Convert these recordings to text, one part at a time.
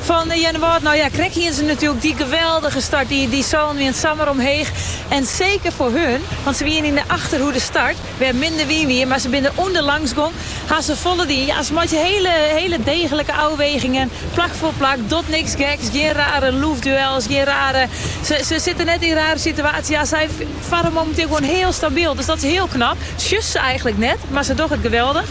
Fan Earnewâld, no ja, krekt hiene se natuerlik dy geweldige start. Dy dy sâlen wiene samar omheech en seker foar hun, want se wiene yn de achterhoede start wêr't minder wyn wie, mar se binne der ûnderlâns gongen, ha se folle dien. Ja, se meitsje hiele hiele degelike ôfwegingen, plak foar plak, dogge niks geks, gjin rare loefduels, gjin rare, se se sitte net yn rare situaasjes. Ja, sy farre momenteel gewoan hiel stabyl, dus dat is hiel knap. Sjochst se eigenlik net, mar se dogge it geweldig.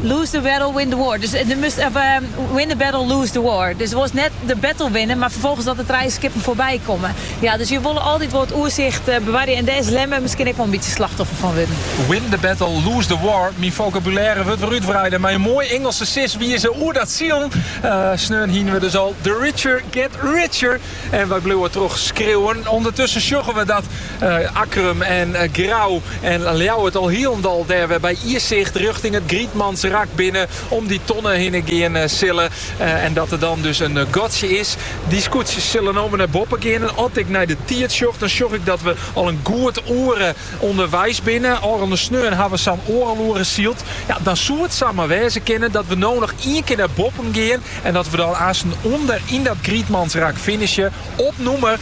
Lose the battle, win the war. Dus de must of ehm, win the battle, lose the war. Dus wolst net de battle winne, mar ferfolgens dat der trije skippen foarby komme. Ja, dus je wolle altyd wol it oersicht eh, bewarje en dêr is Lemmer miskien ek wol in bytsje slachtoffer fan wurden. Win the battle, lose the war. Myn fokabulêre wurdt wer útwreide mei in moaie Ingelse siswize oer dat silen. Eh, sneon hiene we dus al The Richer Get Richer. En wy bliuwe troch skriuwen. Undertussen sjogge we dat Akkrum en Grou en Ljouwert al hielendal dêr wer by Iesicht rjochting it Grietmansrak binne, om dy tonne hinne gean sille. En dat der dan dus in gatsje is. Dy skûtsjes sille no mar nei boppen gean. En at ik nei de tiid sjoch, dan sjoch ik dat we al in goed oere ûnderweis binne, ôfrûne sneon hawwe sa'n oardel oere syld, ja, dan soe it samar wêze kinne dat we no noch ien kear nei boppen gean en dat we dan aansten ûnder yn dat Grietmansrak finishje op nûmer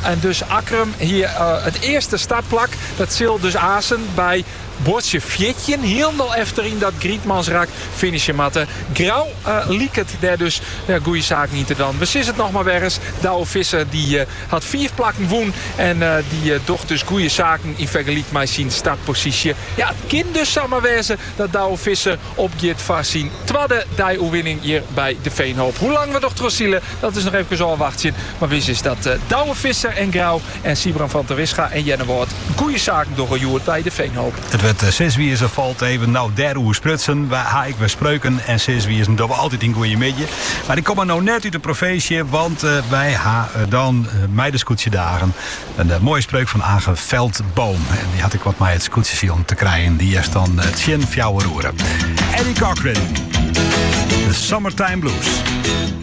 en dus Akkrum hie it earste startplak. Dat sil dus aansten by buordsje fjirtjin hielendal efter yn dat Grietmansrak finishje moatte. Grou liket dêr dus goeie saken yn te dwaan. We sizze it noch mar wer ris, Douwe Visser die Hat fiif plakken wûn en dy docht dus goede saken yn fergelyk mei syn startposysje. Ja, it kin dus sa mar wêze dat Douwe Visser opgiet foar syn twadde dei-oerwinning hjir by De Veenhoop. Hoe lang we noch trochsile, dat is noch efkes ôfwachtsjen, mar wis is dat Douwe Visser en Grou en Sijbren van Terwisga en Earnewâld goede saken dogge hjoed by De Veenhoop. It wurd siswize falt, even no dêr oer sprutsen. Wy ha ek wer spreuken en siswizen dogge we altyd yn Goeiemiddei. Mar dy komme no net út de provinsje, want wy ha dan mei de skûtsjedagen in moaie spreuk fan Age Veldboom. En dy hat ek wat mei it skûtsjesilen te krijen. Dy is dan tsjin fjouwer oere. Eddie Cochran, The Summertime Blues.